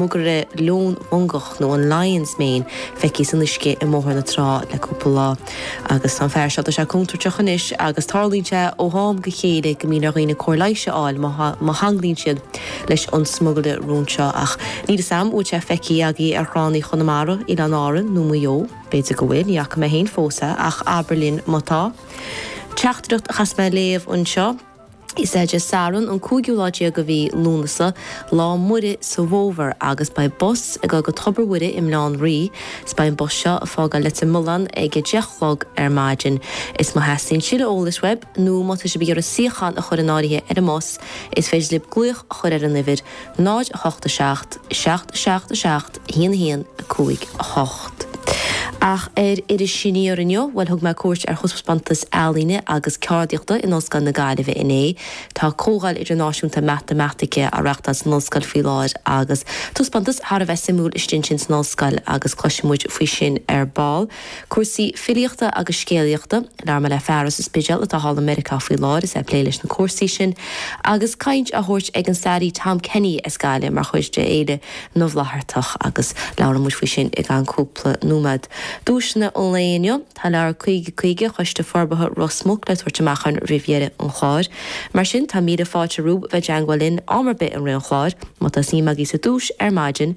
Smugairle róin mongach nó an lion's mane feicthe san uisce i mBóthar na Trá le cúpla lá. Agus tá an fear seo, tá sé contúirteach anois agus tarlaíonn sé ó ham go chéile go mbíonn ar dhaoine cóir leighis a fháil má theangmhaíonn siad leis an smugairle róin seo. Ach níl fhios a'm an bhfuil sé feicthe agaibh ar thránna Chonamara, Oileáin Árann nó Mhaigh Eo. B'fhéidir go bhfuil, ní fhaca mé féin fós é, ach abair linn má tá. Teachtaireacht a chaithfeas mé a léamh anseo. Is é Dé Sathairn an cúigiú lá déag de mhí Lúnasa, lá Muire sa bhfómhar, agus beidh bus ag dul go Tobar Mhuire i mBaile Átha an Rí, 's beidh an bus seo a' fágáil Leitir Mealláin ag a deich 'chlog ar maidin. Is má theastaíonn tuilleadh eolais uaib, nó má tá sibh ag iarraidh suíochán a chur in áirithe ar an mbus, is féidir libh glaoch a chur ar an uimhir, 0 8 7 7 7 7. 1 1 5 8 Ach ar Iris Aniar inniu, bhuel thug mé cuairt ar thaispeántas ealaíne agus ceardaíochta in Ollscoil na Gaillimhe inné. Tá Comhdháil Idirnáisiúnta Matamaitice á reáchtáil san ollscoil faoi láthair agus taispeántas thar a bheith suimiúil istigh ansin san ollscoil agus cloisfidh muid faoi sin ar ball. Cúrsaí filíochta agus scéalaíochta. Labhróidh mé le fear as an Spidéal atá thall i Meiriceá faoi láthair is é ag plé leis na cúrsaí sin, agus caint á thabhairt ag an staraí Tom Kenny as Gaillimh mar chuid de Fhéile na bhFlaitheartach, agus labhróidh muid faoi sin i gceann cúpla nóiméad. Duaiseanna an lae inniu. Tá leabhar 50, caoga, Choiste Forbartha Ros Muc le tabhairt amach a'm roimh dheireadh an chláir. Mar sin, tá míle fáilte romhaibh bheith ag teangmháil linn am ar bith i rith an chláir. Má tá suim agaibh sa duais ar maidin.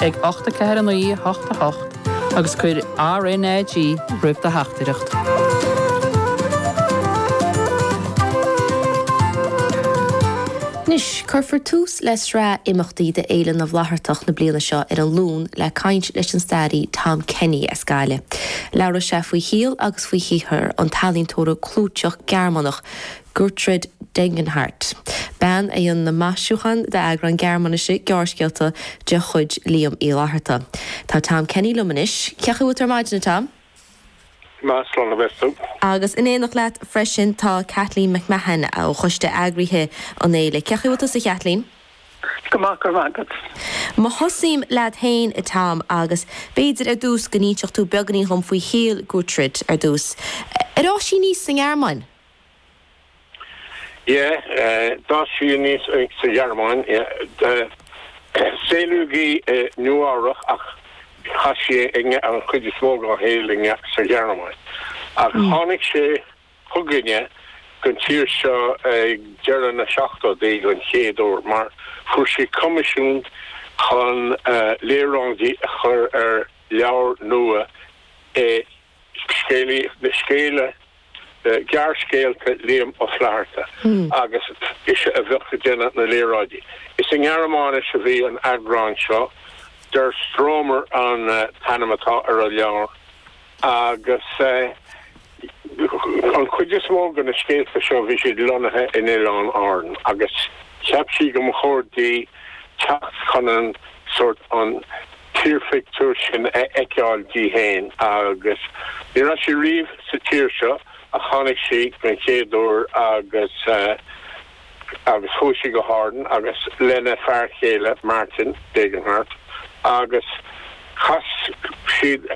ag 8 4 9 8 8 agus cuir RNAG roimh do theachtaireacht. Anois, cuirfear tús le sraith imeachtaí do Fhéile na bhFlaitheartach na bliana seo ar an Luan le caint leis an staraí Tom Kenny as Gaillimh. Labhróidh sé faoi shaol agus faoi shaothar an ealaíontóra clúiteach Gearmánach, Gertrude Degenhardt. Bean a rinne na maisiúcháin d'eagrán Gearmáinise gearrscéalta de chuid Liam Uí Fhlaithearta. Tá Tom Kenny liom anois. Cén chaoi a bhfuil tú ar maidin, a Tom? Go maith slán a bheas tú. Agus in éineacht leat freisin tá Kathleen McMahon ó choiste eagraithe an fhéile. Cén chaoi a bhfuil tusa, a Khathleen? Go maith, go raibh maith agat. Má thosaím leat féin, a Tom, agus b'fhéidir ar dtús go n-inseofá beagainín dhom faoi shaol Gertrude ar dtús. Ar fhás sí aníos sa nGearmáin? Yeah. D'fhás sí aníos sa Ghearmáin. Yeah. Saolaíodh í i Nua-Eabhrach ach chaith sí an chuid is mó dá shaol sa Ghearmáin. Ach tháinig sí chugainne don tír seo ag deireadh na seachtóidí don chéad uair mar fuair sí coimisiún chun léaráidí a chur ar leabhar nua i scéalta le scéalta gearrscéalta Liam Ó Flaithearta agus ise a bheadh ag déanamh na léaráidí. Is i nGearmáinis a bhí an t-eagrán seo, Der Stromer an t-ainm atá ar an leabhar, agus an chuid is mó de na scéalta seo bhí siad lonnaithe in Oileáin Árann agus cheap sí go mba chóir di teacht chun an sórt, an. tírphictiúr sin a fheiceáil di féin agus ní raibh sí riamh sa tír seo ach tháinig sí den chéad uair agus agus chuaigh sí go hÁrainn agus lena fear chéile Martin Degenhardt agus chas siad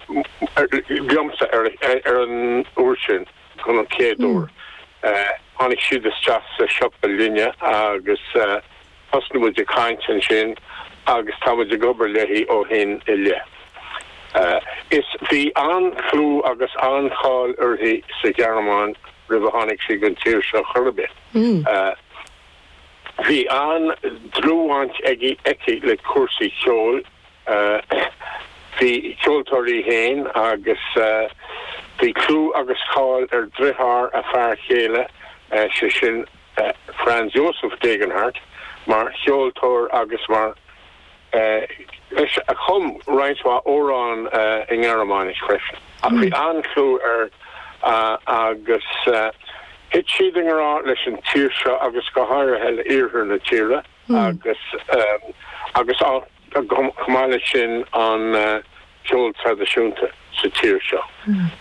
liomsa ar ar an uair sin don chéad uair. Tháinig siad isteach sa siopa linne agus Thosnaigh muid ag caint ansin agus tá muid ag obair léi ó shin i leith. Is bhí an-chlú agus an-cháil uirthi sa Ghearmáin roimh a tháinig sí don tír seo chor ar bith. Bhí an-dlúthbhaint aici le cúrsaí ceoil, ba cheoltóir í féin agus bhí clú agus cáil ar dhritheár a fear chéile, sé sin, Franz Josef Degenhardt mar cheoltóir agus mar dhuine a chum roinnt mhaith amhrán i nGearmáinis freisin ach bhí an-chlú air agus thit siad i ngrá leis an tír seo agus go háirithe le hiarthar na tíre agus agus chomh maith leis sin an ceol traidisiúnta sa tír seo.